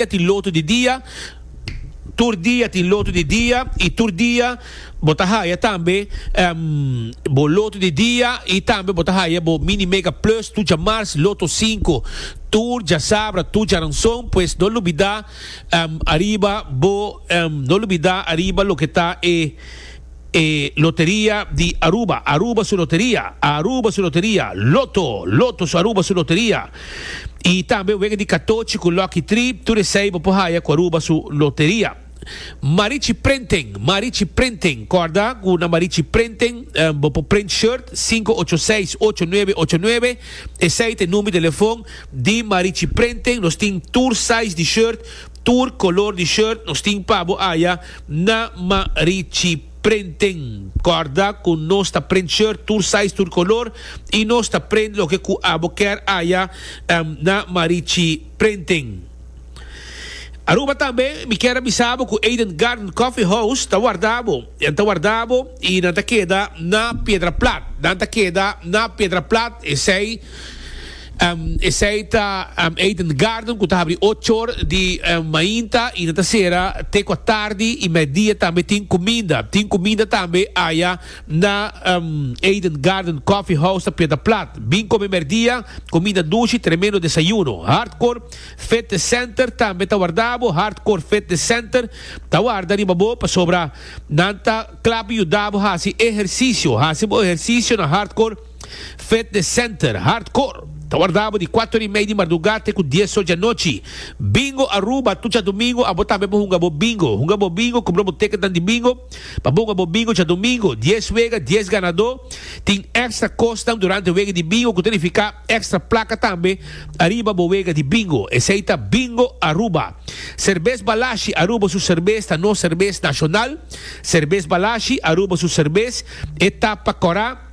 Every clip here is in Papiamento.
dia tin lotu di dia, tur dia tin lotu di dia, i tur dia bo ta haya tambe bo lotu di dia i tambe bo ta haya bo Mini Mega Plus tur dja mars, Loto Sinku tur dja sabra, tur dja ranson, pues no lubida ariba bo no lubida ariba loke ta e. E loteria di Aruba, Aruba su loteria, Aruba su loteria, Lotto, Lotto su Aruba su loteria, y tambe wega di katochi cu Lucky Tree, tur esey bo por haya cu Aruba su loteria. Marichi Printing, Marichi Printing, corda cu na Marichi Printing bo por print shirt, sinku ocho seis, ocho nuebe, ocho nuebe, esey ta e number di telefon di Marichi Printing, nos tin tur size di shirt, Tur color di shirt nos tin pa bo aya na Marichi Printing. Corda cu nos ta print shirt tur size tur color y nos ta print loke cu abo ker aya na Marichi Printing. Aruba tambe mi kier a bisa bo cu Eden Garden Coffee House ta warda bo. Nan ta warda bo y nan ta keda na Piedraplat. Nan ta keda na Piedraplat esey. Esei ta Eden Garden cu ta habri ocho or di mainta y nan ta cera te cua tardi y medidia tambe tin cuminda. Tin cuminda tambe aya na Eden Garden Coffee House ta Piedra Plat. Bin come merdia, cuminda dushi, tremendo desayuno. Hardcore Fitness Center tambe ta warda bo. Hardcore Fitness Center ta warda riba bo pasobra nan ta clap yuda bo haci ehercicio. Haci bo ehercicio na Hardcore Fitness Center, Hardcore, ta wardabo di kuater ora i mei di mardugá te ku dies or di anochi. Bingo Aruba, tur djadumingu abo tambe por hunga bo bingo. Hunga bo bingo, kumpra bo teketnan di bingo pa bo hunga bo bingo djadumingu. Dies wega, dies ganadó. Tin èkstra kosnan durante wega di bingo ku ta nifiká èkstra plaka tambe ariba bo wega di bingo. Esei ta Bingo Aruba. Serbes Balashi, Aruba su serbes ta nos serbes nashonal. Serbes Balashi, Aruba su serbes e ta pa kòrá.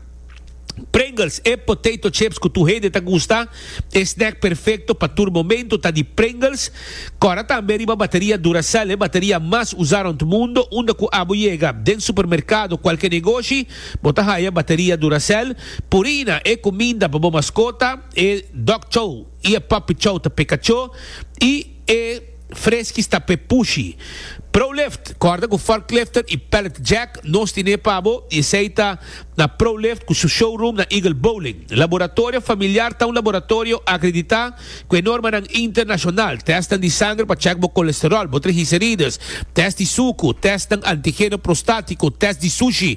Pringles, e potato chips cu tur hende ta gusta. E snack perfecto pa tur momento ta di Pringles. Cora tambe riba bateria Duracell, e bateria mas usa rond mundo. Unda cu abo yega, den supermercado, cualke negoshi, bo ta haya bateria Duracell. Purina, e cuminda pa bo mascota, e dog chow y e puppy chow ta peca cho. Y e. Freski sta p'e pushi. Prolift, Kòrda ku Forklifter i Pallet Jack nos tine pa bo i esei ta na Prolift ku su showroom na Eagle Bowling. Laboratorio Familiar ta un laboratorio akreditá ku e normanan internashonal, tèstnan di sanger pa chèk bo kolesteròl, bo trigiserides, tèst di suku, tèstnan antigeno prostátiko, tèst di sushi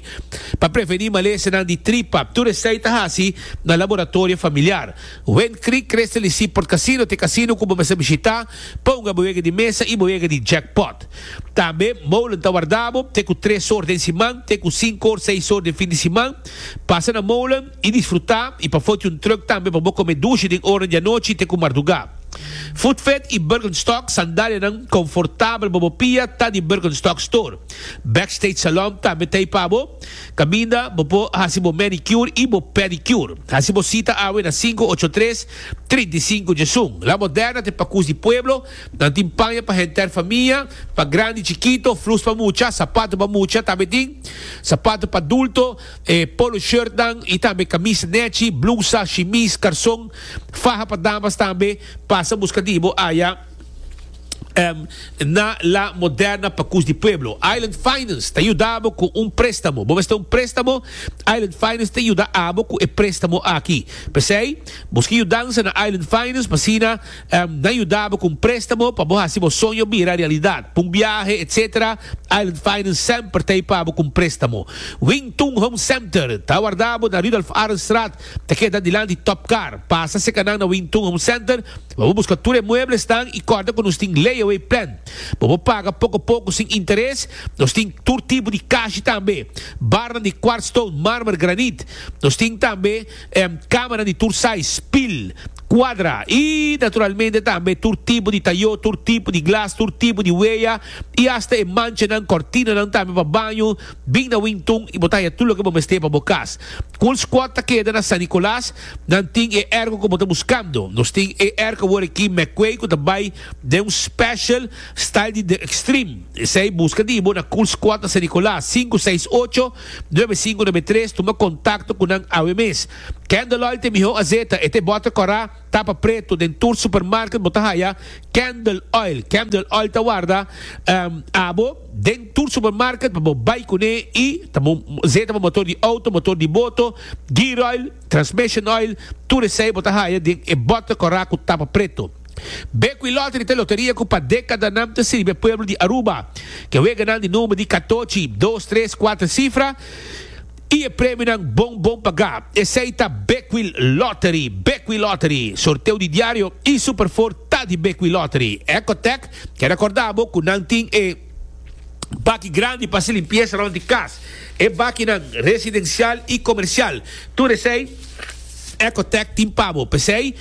pa prevení malesenan di tripa, tur esei ta hasi na Laboratorio Familiar. Wen Creek Crystal y Seaport Casino t'e casino cu bo mester bishita pa hunga bo wega di mesa y bo wega di jackpot. Tambe Molen ta warda bo te cu tres or den siman te cu cinco or seis or den fin di siman. Pasa na Molen y disfruta y pa foti un truck tambe pa bo come dushi den oranan di anochi te cu marduga. Food Fed y Birkenstock sandalianan confortabel pa bo pia ta di Birkenstock Store. Backstage Salon tambe t'ey pa bo. Caminda, bo por haci bo manicure y bo pedicure. Haci bo cita awe na sinku ocho tres, trinta i sinku dje sun. La Moderna te pacus di pueblo, nan tin paña pa henter famia, pa grandi, chikito, flus pa mucha, sapato pa mucha, tambe tin sapato pa dulto, e polo shirtnan y tambe camisa nechi, blusa, shimis, carson, faha pa damas tambe. Pasa busca di bo aya. na La Moderna pa Cus di Pueblo. Island Finance ta yuda bo cu un prestamo. Bo mester un prestamo? Island Finance ta yuda abo cu e prestamo aki. P'esey, busca yudansa na Island Finance pa asina nan yuda bo cu un prestamo pa bo haci bo soño bira realidad. Pa un biahe, etc. Island Finance semper ta ey pa bo cu un prestamo. Wing Tun Home Center ta wardabo na Rudolf Arendstraat, ta keda dilanti Top Car. Pasa secanan na Wing Tun Home Center. Bo por buska tur e mueblesnan i kòrda ku nos tin layaway plan. Bo por paga poko poko sin interes. Nos tin tur tipo di kashi tambe, barnan di kwart stone, marmer, granit. Nos tin tambe kamanan di tur size, spil, kwadra i naturalmente tambe tur tipo di tayó, tur tipo di glas, tur tipo di weya i asta e manchanan, kòrtinanan tambe pa baño. Bin na Wingtun i bo ta haya tur loke bo mester pa bo kas. Coolsquad ta keda na San Nicolas. Nan tin e ergo ku bo ta buskando. Nos tin e ergo awor aki Mekwe ku ta bai den un special style di The Extreme. Esei buska di bo na Cool Squad na San Nicolas, sinku seis ocho, nuebe sinku nuebe tres. Tuma kontakto ku nan awe mes. Candle Oil ta e mihó azeta. E ta e bòter kòrá, tapa pretu. Den tur supermarket bo ta haya Candle Oil. Candle Oil ta warda abo. Den tur supermarket pa bo bai kuné i ta bo zeta bo motor di outo, motor di boto, gear oil, transmission oil, tur esei bo ta haya den e bòter kòrá ku tapa preto. Bekwí Lottery ta e loteria ku pa dekadanan ta sirbi e pueblo di Aruba. Ke weganan di number di katochi, dos, tres, kuater sifra. Y e premionan bon bon pagá. Esei ta Beckwil Lottery, Beckwil Lottery, sorteo di diario y Super Four ta di Beckwil Lottery. Ecotec ke recorda bo cu nan tin e baki grandi pa haci limpieza rond di cas. E bakinan residencial y comercial. Tur esei Ecotec tin pa bo. P'esei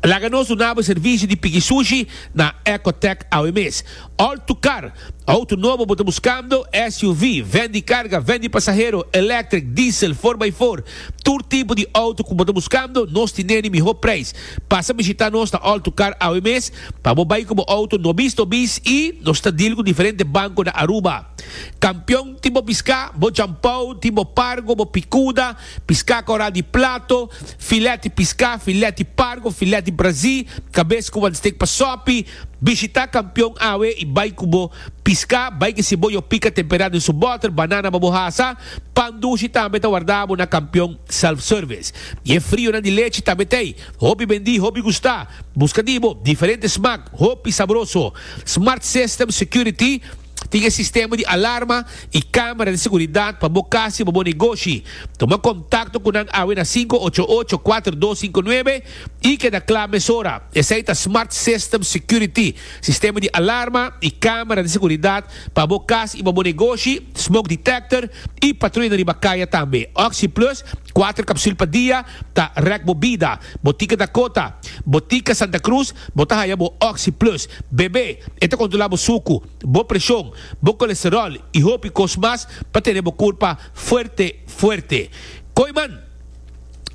laga nos dunabo e servicio di pigi sushi na Ecotec awe mes. All to Car. Auto nobo bo ta buskando? SUV, ven di karga, ven di pasahero, electric, diesel, for by four, tur tipo di auto ku bo ta buskando, nos tine di mihó preis. Pasa bishitá nos na All to Car awe mes pa bo bai ku bo auto nobis nobis i nos ta deal ku diferente banko na Aruba. Kampion tin bo piská, bo jampou, tin bo pargo, bo pikuda, piská koral di plato, filèt di piská, filèt di pargo, filèt di brazí, kabes ku wan stik pa sòpi, Bishita kampion awe i bai ku bo piská. Bai ke si bo yo pika temperá den su bòter, banana pa bo hasa. Pan dushi tambe ta wardá bo na kampion self-service. I e frionan di lechi tambe t'ei. Hopi bendí, hopi gustá. Buska di bo diferente smak, hopi sabroso. Smart System Security. Tin e sistema di alarma i kamera di seguridat pa bo kas i pa bo negoshi. Tuma kontakto ku nan awe na sinku ocho ocho kuater dos sinku nuebe i keda kla mesora. Esei ta Smart System Security, sistema di alarma i kamera di seguridat pa bo kas i pa bo negoshi, smoke detector i patruyanan riba kaya tambe. OxyPlus, kuater kapsul pa dia, ta rèk bo bida. Botika Dakota, Botika Santa Cruz Bo ta haya bo Oxy Plus, bebe, e ta kontrolá bo suku, bo preshon, bo kolesteròl i hopi kos mas pa tene bo kurpa fuerte fuerte. Koeman,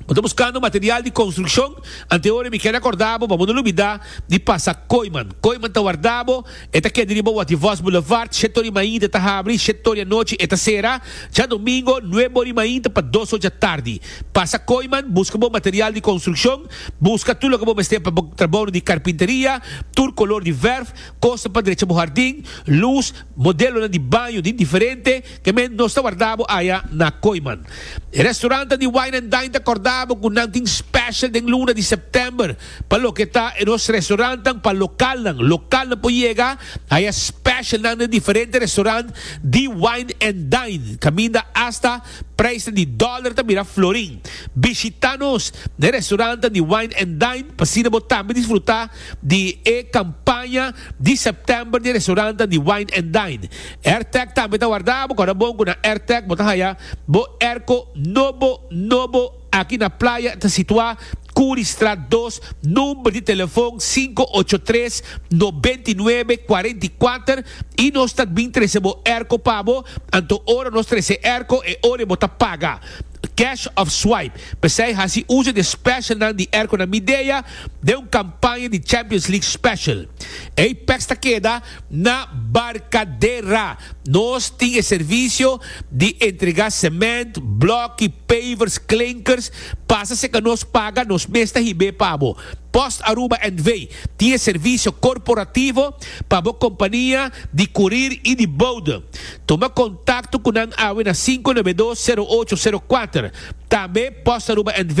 Bo ta buskando material di konstrukshon? Antehoren mi keda kordá bo pa bo no lubidá di pasa Koeman. Koeman ta warda bo. E ta keda riba Waty Vos Boulevard, shèt ori mainta ta habri, shèt ori anochi e ta sera. Djadomingo, nuebe ori mainta pa dos or djatardi. Pasa Kooiman, buska bo material di konstrukshon, buska tur loke bo mester pa bo trabounan di karpinteria, tur kolor di vèrf, kosnan pa drecha bo hardin, lus, modelonan di baño di diferente, ke men nos ta warda bo aya na Kooiman. E restorantan di Wine and Dine ta kòrda bo ku nan tin special den luna di sèptèmber. Pa loke ta e nos restaurantnan pa lokalnan, lokalnan por yega hay e specialnan den diferente restaurant di Wine and Dine caminda hasta prijsnan di dollar ta mira florin. Bishita nos na e restaurantnan di Wine and Dine pa asina bo tambe disfruta di e campaña di September di e restaurantnan di Wine and Dine. Airtag tambe ta warda, bo kora bon cu na Airtag bo ta haya bo airco nobo nobo. Aki na playa ta situá Currystraat dos, number di telefon sinku ocho tres noventa i nuebe kuarenta i kuater i nos ta bin trese bo erko pa bo, anto ora nos trese erko e ora bo ta paga, cash of swipe. P'esei hasi uso di e specialnan di erkonan Midea den un kampaña di Champions League special. Ey peks ta keda. Na Barcadera nos tin e servicio di entrega cement, bloki, pavers, klinkers, pasa si ka nos paga nos mes ta hib'é pa bo. Post Aruba NV. tin e servicio corporativo pa bo compania di curir y di bode. Tuma contacto cu nan awe na cinco nove dos zero ocho zero cuater. Tambe Post Aruba NV.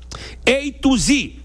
Ey tu zi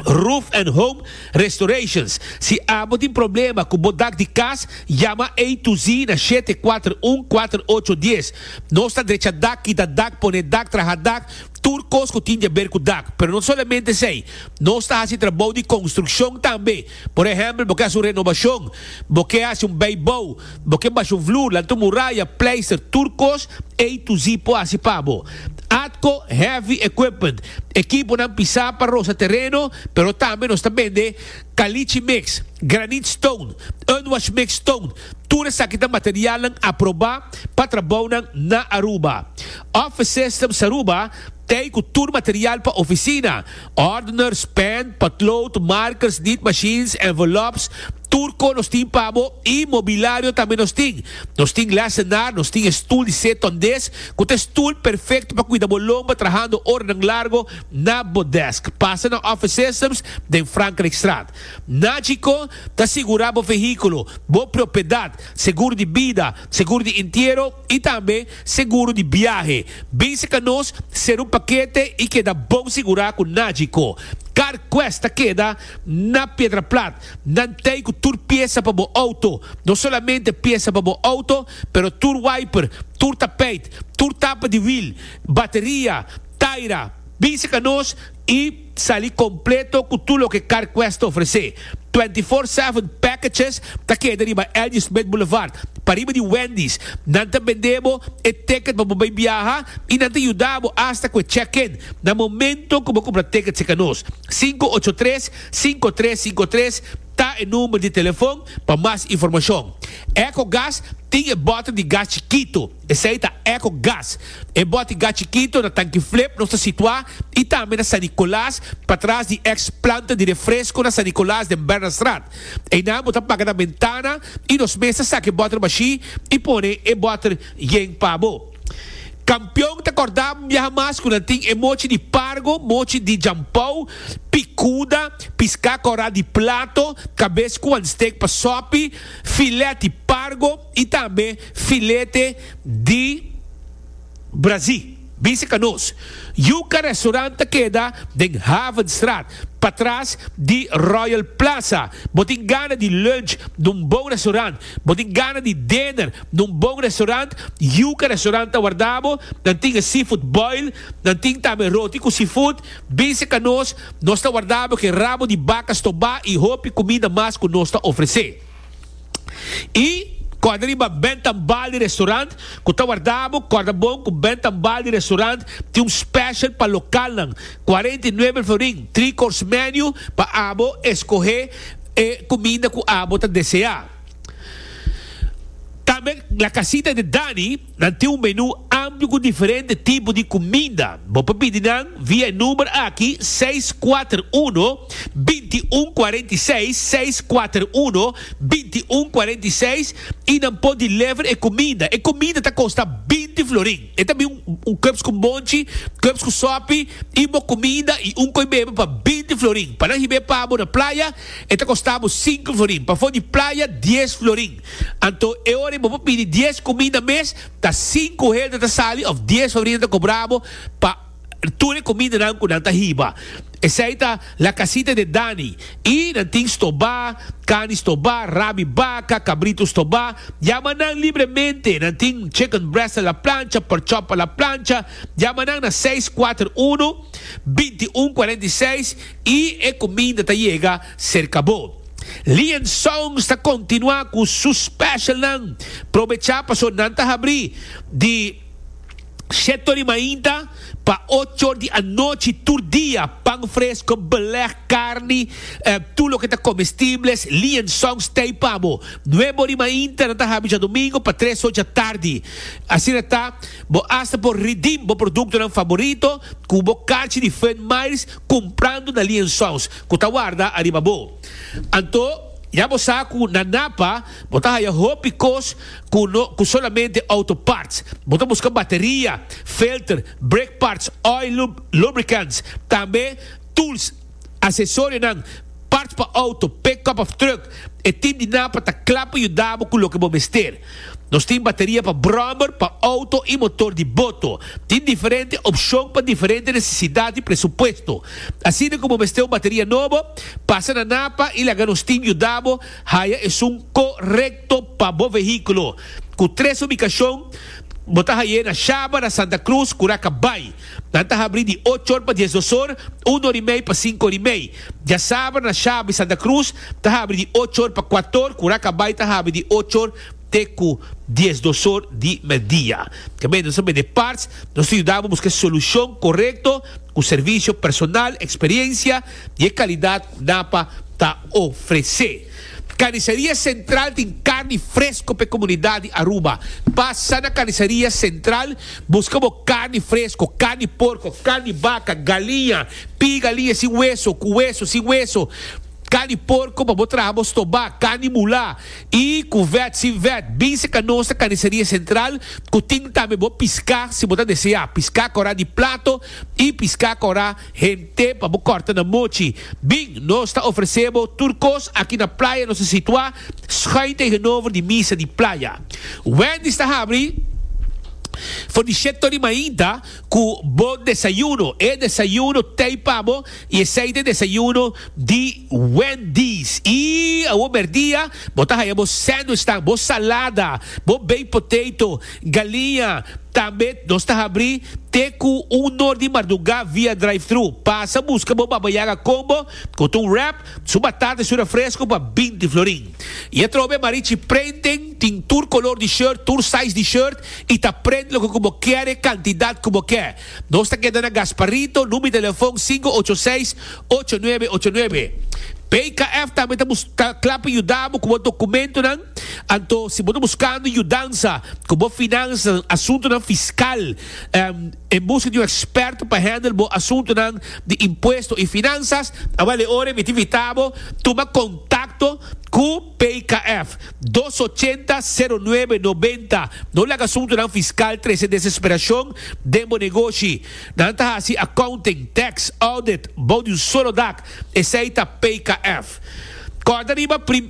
Roof and Home Restorations. Si abo tin problema cu bo dak di cas, yama Ey tu zi na shete kuater un kuater ocho dies. Nos ta drecha dak, kita dak, pone dak, traha dak, tur cos cu tin di haber cu dak. Pero no solamente esey, nos ta haci trabou di construccion tambe. Por ehèmpel, bo ke hasi un renobashon, bo ke hasi un beibou, bo ke basha un vloer, lanta un muraya, pleister tur kos, ei Tuzi por hasi pa bo. Atco Heavy Equipment, Ekiponan pisá pa rosa tereno, pero tambe nos ta bende Caliche Mix, Granite Stone, Unwash Mix Stone, tur esaki ta materialnan aprobá pa trabounan na Aruba. Office Systems Aruba ta ei ku tur material pa ofisina. Ordeners, pen, potlood, markers, niet machines, envelops, tur ko nos tin pa bo i mobilario tambe nos tin. Nos tin lessenaar, nos tin e stoel di seton des ku ta e stoel perfecto pa kuida bo lomba trahando oranan largo na bo desk. Pasa na Office Systems den Frankrijkstraat. Na djiko ta sigura bo vehiculo, bo propiedad, seguro di bida, seguro di intiero, i tambe seguro di biahe. Basic Anos ser un pakete i keda bon sigurá ku nadji ko. Kar kwes ta keda na Piedraplat. Nan tei ku tur piesa pa bo outo. No solamente piesa pa bo outo, pero tur wiper, tur tapeit, tur tapa di wil, bateria, taira. Basic Anos i. Sali completo cu tur loke CarQuest ta ofrece. Twenty Four Seven Packages ta keda riba L.G. Smith Boulevard, pariba di Wendy's. Nan ta bende bo e ticket pa bo bay biaha y nan ta yuda bo hasta cu e check-in na momento cu bo cumpra ticket cerca nos. Cinco ocho tres, cinco tres cinco tres ta e number di telefon pa mas informacion. Ecogas tin e bottle di gas chikito. Esei ta Eco Gas. E boti gas chikito na tanki flip nos ta situá i tambe na San Nicolas, patras di ex planta di refresco na San Nicolas den Bernardstraat. Einan bo ta paga na bentana i nos mes ta saki e bòter bashí i pone e bòter yen pa bo. Kampion ta kòrda biaha mas ku nan tin e mochi di pargo, mochi di jampou, pikuda, piská kòrá di plato, kabes ku wan stek pa sòpi, filèt di pargo, y tambe filete di brazi, bisa ka nos. Yuca Restaurant ta keda den Havenstraat, patras di Royal Plaza. Bo tin gana di lunch na un bon restaurant, bo tin gana di dinner na un bon restaurant, Yuca Restaurant ta warda bo. Nan tin e seafood boil, nan tin tambe roti cu seafood. Bisa ka nos, nos ta warda bo cu e rabo di baca stobá y hopi cumida mas cu nos ta ofrece. I kòrda riba bènt tan bal di restaurant ku ta wardabo, kòrda bon ku bènt tan bal di restaurant tin un special pa lokalnan, cuarenta y nueve el florin, three course menu pa abo eskohé e kuminda ku abo ta deseá. Tambe La Casita de Dani. Nan tin un menú amplio ku diferente tipo di kuminda. Bo por pidi nan via e number aki seis kuater uno, binti un kuarenta i seis, seis kuater uno, binti un kuarenta i seis, i nan por deliver e kuminda. E kuminda ta kosta binti florin. E ta bin un kuebs ku monchi, kuebs ku sòpi, i bo kuminda i un koi bebe pa binti florin. Pa nan hib'é pa bo na playa, e ta kosta bo sinku florin. Pafó di playa, dies florin. Anto e ora bo por pidi dies cuminda mes, ta sinku hende ta sali of dies sobrina ta cobra bo pa tur e cumindanan cu nan ta hiba. Esey ta La Casita de Dani y nan tin stobá, cani stobá, rabi baca, cabrito stobá. Yama nan libremente, nan tin chicken breast a la plancha, pork chop a la plancha. Yama nan na seis kuater unu, binti un kuarenta i seis y e cuminda ta yega. Serka bo. Lian Songs ta continua cu su special nan. Probecha paso nan ta habri di Shetto di mainta pa ochor di anochi tur dia, pan fresco, beleg, carni, tur loke ta comestibles, Lian Songs tey pa bo. Nuebo di mainta nan ta habi djadomingo pa tres or djatardi. Asina ta bo hasta por redeem bo productonan favorito cu bo carchi di Fun Mairs cumprando na Lian Songs. ku ta warda ariba bo. Anto, ya bo sa ku na Napa bo ta haya hopi kos ku no ku solamente outo parts. Bo ta buska bateria, filter, brake parts, oil lub, lubricants, tambe tools, asesorionan, parts pa outo, pickup of truck. E team di Napa ta kla pa yuda bo ku loke bo mester. Nos tin bateria pa brommer, pa auto y motor di boto. Tin diferente opcion pa diferente necesidad y presupuesto. Asina cu bo mester un bateria nobo, pasa na Napa y laga nos tin yuda bo haya esun corecto pa bo vehiculo. Cu tres ubicacion bo ta haye na Shaba, na Santa Cruz, Curaca Bay. Nan ta habrí di ocho or pa diesdos or, un or i mei pa sinku or i mei. Djasabra na Shabby Santa Cruz ta habrí di ocho or pa kuater or ku Rakabay ta habrí di ocho or te ku diesdos or di merdia. Kemey nos a bende parts, nos ta yuda bo buska e solushon korekto ku servisio personal, eksperiensia i e kalidat ku NAPA ta ofresé. Carniceria Central tin carni fresco p'e comunidad di Aruba. Pasa na Carniceria Central busca bo carni fresco, carni porco, carni baca, galiña, pie galiña sin hueso, cu hueso, sin hueso, carni porco pa bo traha bo stobá, carni mulá y cu vet, sin vet. Bin seca nos na Carniceria Central cu tin tambe bo piscá si bo ta desea, piscá corá di plato y piscá corá. Hente pa bo kòrta na mochi. Bin, nos ta ofresé bo tur kos aki na playa nos ta situá schuin tegenover di misa di playa. Wendy's ta habri for di shet tori mainta ku bo desayuno. E desayuno tei pa bo i esei ta e desayuno di Wendy's. I awor merdia bo ta haya bo sandwichnan, bo salada, bo baked potato. Galinha, Tambet nos ta habri te cu un nor di marduga via drive-thru. Pasa busca bo Baba Yaga Combo cu ta un wrap, su batata y su refresco pa binti florin. Y atrobe Marichi Printing tin tur color di shirt, tur size di shirt y ta print loke cu bo kere, cantidad cu bo ke. Nos ta keda na Gasparito, number di telefon sinku ocho seis, ocho nuebe ocho nuebe. PKF tambe ta bus ta cla pa yuda bo cu bo documentonan. Anto, si bo ta buskando yudansa ku bo finansianan den asuntunan fiskal, en buska di un eksperto pa hendel bo asuntunan di impuesto i finansas, a bale ora mi ta invitá bo tuma kontakto ku PKF. Dos ochenta, sero nuebe, nobenta. No laga asuntunan fiskal trese desesperashon den bo negoshi. Nan ta hasi accounting, tax, audit bou di un solo dak. Esei ta PKF. Kòrda riba prim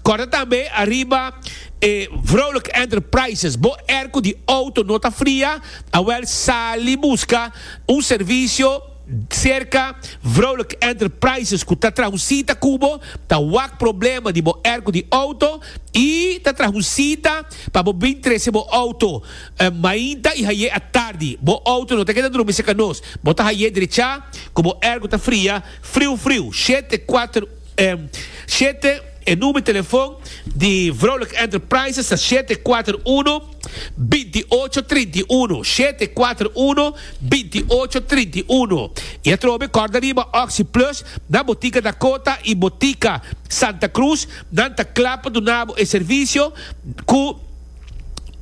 kòrda tambe ariba e Vrolijk Enterprises. Bo airco di outo no ta fria? Awèl sali buska un servisio serka Vrolijk Enterprises ku ta traha un sita ku bo, ta wak problema di bo airco di outo i ta traha un sita pa bo bin trese bo outo. Mainta i haye a tardi, bo outo no ta keda drumi cerca nos. Bo ta haye drecha cu bo ergo ta fria, friu friu. Shete kuater Shete E number telefon di Vrouwelijke Enterprises ta shete kuater uno, binti ocho, trinta i uno. Shete kuater uno, binti ocho, trinta i uno. I atrobe corda riba Oxi Plus na Botica Dakota i Botica Santa Cruz. Nan ta cla pa duna bo e servicio cu.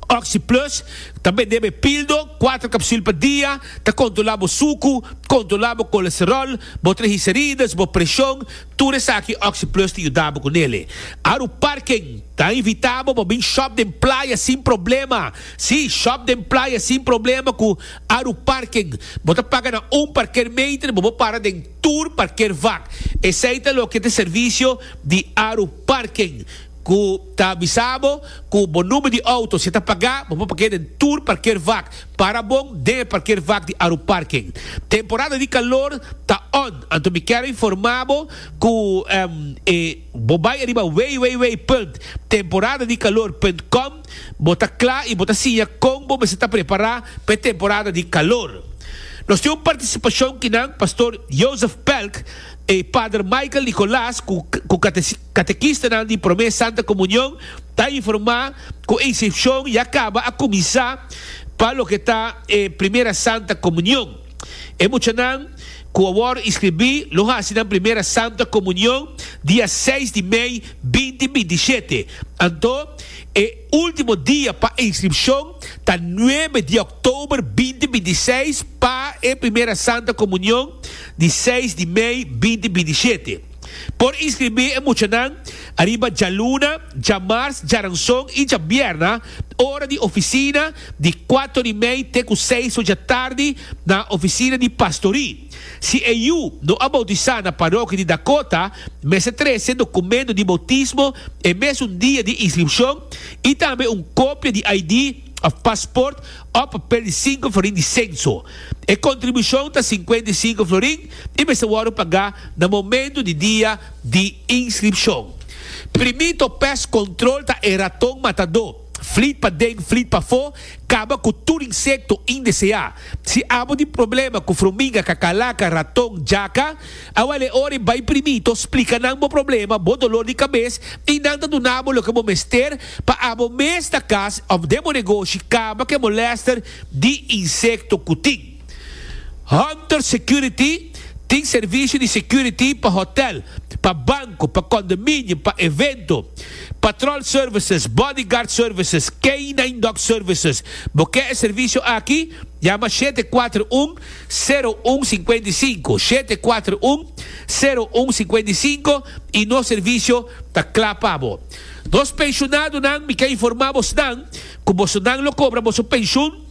Oxy Plus ta bende bo e pildo, kuater kapsul pa dia, ta kontrolá bo suku, kontrolá bo kolesteròl, bo trigiserides, bo preshon, tur esaki Oxy Plus ta yuda bo ku nele. Aru Parken ta invitá bo pa bin shòp den playa sin problema, sí, shòp den playa sin problema ku Aru Parken. Bo ta paga na un parker meinter bo bo para den tur parker vak. Esei ta loke ta servisio di Aru Parken. Ku ta avisa bo ku bo number di outo si ta pagá bo por parkea den tur parkeervak. Para bon den e parkeervak di Aruparken. Temporada di kalor ta on, anto mi kèra informá bo ku e bo bai ariba www punt temporada di kalor punt com bo ta kla i bo ta siña kon bo mester ta prepará pa e temporada di kalor. Nos tin un partisipashon kinan Pastor Joseph Pelk i Pader Michael Nicolas ku Katekistanan di promé Santa Komunion ta informá ku Ensepshon ya kaba a kuminsá pa loke ta e Primera Santa Komunion. E muchanan ku a wòrdu inskribí lo hasi nan Primera Santa Komunion dia seis di mei binti binti shete. Anto e último dia pa inskripshon ta nuebe di òktober binti binti seis pa e Primera Santa Komunion di seis di mei binti binti shete. Por inscribí e muchanan ariba djaluna, djamars, djaranson i djabierna ora di oficina di kuato di mei te ku seis oja tardi na oficina di pastorí. Si e yu no a boutisá na parokia di Dakota, mester trese dokumento di boutismo e mesun dia di inskripshon i tambe un kopia di ID òf pasport òf papel di sinku florin di senso. E kontribushon ta sinkuenta i sinku florin. i mester wòrdu pagá na momentu di dia di inskripshon. Primí to pes kontrol ta e raton matadó, flit paden flit pafó, kaba ku tur insekto indeseá. Si abo tin problema ku fruminga, kakalaka, raton, jaka, awal e ora di bai primí to splika nan bo problema, bo dolor di kabes, i nan ta duna bo loke bo mester pa abo mes na kas òf den bo negoshi kaba ku e molèster di insekto ku tin. Hunter Security tin servicio di security pa hotel, pa banco, pa condominio, pa evento, patrol services, bodyguard services, canine dog services. Bo ke e servicio aki? Yama shete kuater un, sero un singkuenta i sinku, shete kuater un, sero un singkuenta i sinku i nos servicio ta kla pa bo. Nos pensionadonan mi ke informa bos nan ku boso nan lo kobra boso pension.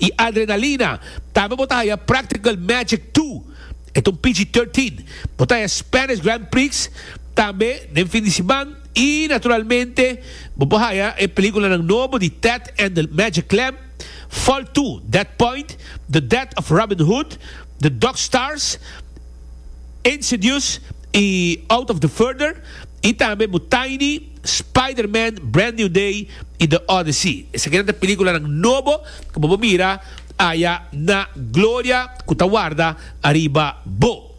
y adrenalina tambe bo ta haya practical magic tu et un pg 13 bo ta haya spanish grand prix tambe den fin di siman y naturalmente bo por haya e peliculanan nobo di ted and the magic clam vol 2 dead point the death of robin hood the dog stars insidious y out of the further y tambe bo tiny Spider-Man, Brand New Day i The Odyssey. Esakinan ta películanan nobo cu bo por mira aya na Gloria cu ta warda ariba bo.